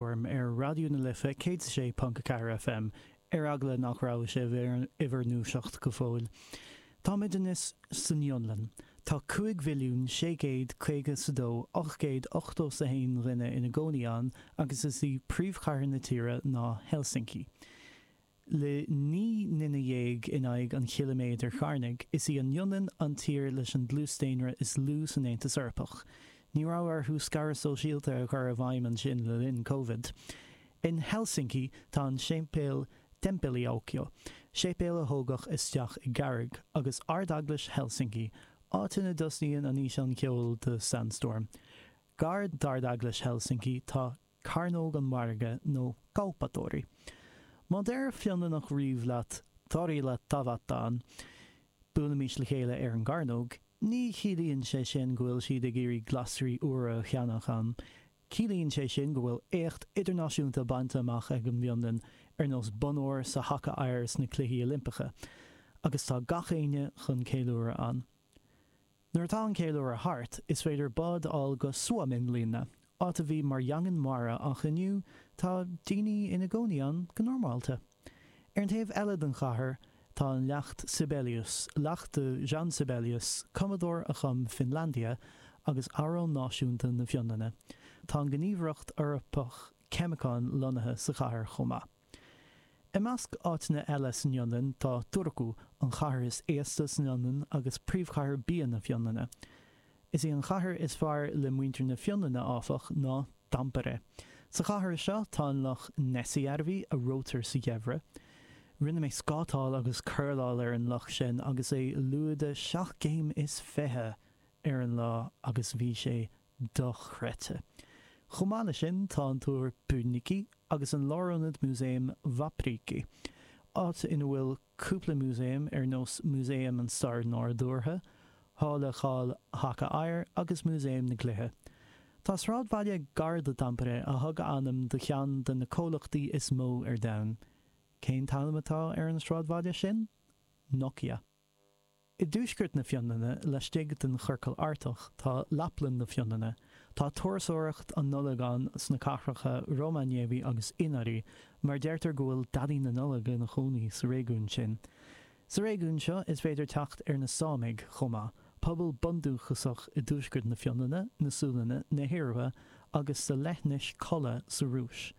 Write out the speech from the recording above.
orm ar Raidió na Life 106.4 FM, ar eagla nach raibh sibh in bhur ndúiseacht go fóill. Táimid anois san Fhionlainn. Tá 5,652,000 880 's 1 dhuine ina gcónaí ann agus is í príomhchathair na tíre ná Helsinki. Le naoi nduine dhéag in aghaidh an chiliméadair chearnaigh, is í an Fhionlainn an tír leis an dlús daonra is lú san Aontas Eorpach. Ní raibh orthu scaradh sóisialta a chur i bhfeidhm ansin le linn Covid. In Helsinki, tá an séipéal Temppeliaukio, séipéal a tógadh isteach i gcarraig, agus Ard-Eaglais Helsinki, áit ina dtosnaíonn an físeán ceoil do Sandstorm. Gar d'Ard-Eaglais Helsinki, tá cearnóg an mhargaidh nó Kauppatori. Má deir Fionlannach riamh leat torilla tavataan, buailimis le chéile ar an gcearnóg, ní chiallaíonn sé sin go bhfuil siad ag iarraidh glasraí úra a cheannach ann, ciallaíonn sé sin go bhfuil éacht idirnáisiúnta bainte amach ag an bhFionlainn ar nós bonn óir sa haca oighir sna Cluichí Oilimpeacha, agus tá gach éinne chun ceiliúradh ann. Nuair atá an ceiliúradh thart, is féidir bád a fháil go Suomenlinna, áit a bhí mar dhaingean mara ach inniu tá daoine ina gcónaí ann go normálta. Ar an taobh eile den chathair tá an leacht Sibelius, leacht do Jean Sibelius, cumadóir a chum Finlandia agus amhrán náisiúnta na Fionlainne. Tá an Ghníomhaireacht Eorpach Ceimiceán lonnaithe sa chathair chomh maith. I measc áiteanna eile san Fhionlainn tá Turku, an chathair is aosta san Fhionlainn agus príomhchathair bia na Fionlainne. Is í an chathair is fearr le muintir na Fionlainne, áfach, ná Tampere. Sa chathair seo tá an loch Näsijärvi, a reoitear sa gheimhreadh. Rinne mé scátáil agus curláil ar an loch sin agus é lúide seacht gcéim is fiche ar an lá agus bhí sé dochreidte. Chomh maith leis sin, tá an Túr Pyynikki agus an Lárionad Músaem Vapriikki, áit ina bhfuil cúpla músaem ar nós Músaem an Stair Nádúrtha, Halla Cháil Haca Oighir agus Músaem na gCluichí. Tá sráidbhaile gar do Tampere a thug a ainm do cheann de na comhlachtaí is mó ar domhan. Cén t-ainm atá ar an sráidbhaile sin? Nokia. I dtuaisceart na Fionlainne, laistigh den Chiorcal Artach, tá Laplann na Fionlainne. Tá turasóireacht na Nollag ann sna cathracha Rovaniemi agus Inari, mar deirtear go bhfuil Daidí na Nollag ina chónaí sa réigiún sin. Sa réigiún seo, is féidir teacht ar na Sámaigh chomh maith, pobal bundúchasach i dtuaisceart na Fionlainne, na Sualainne, na hIorua agus sa leithinis Kola sa Rúis.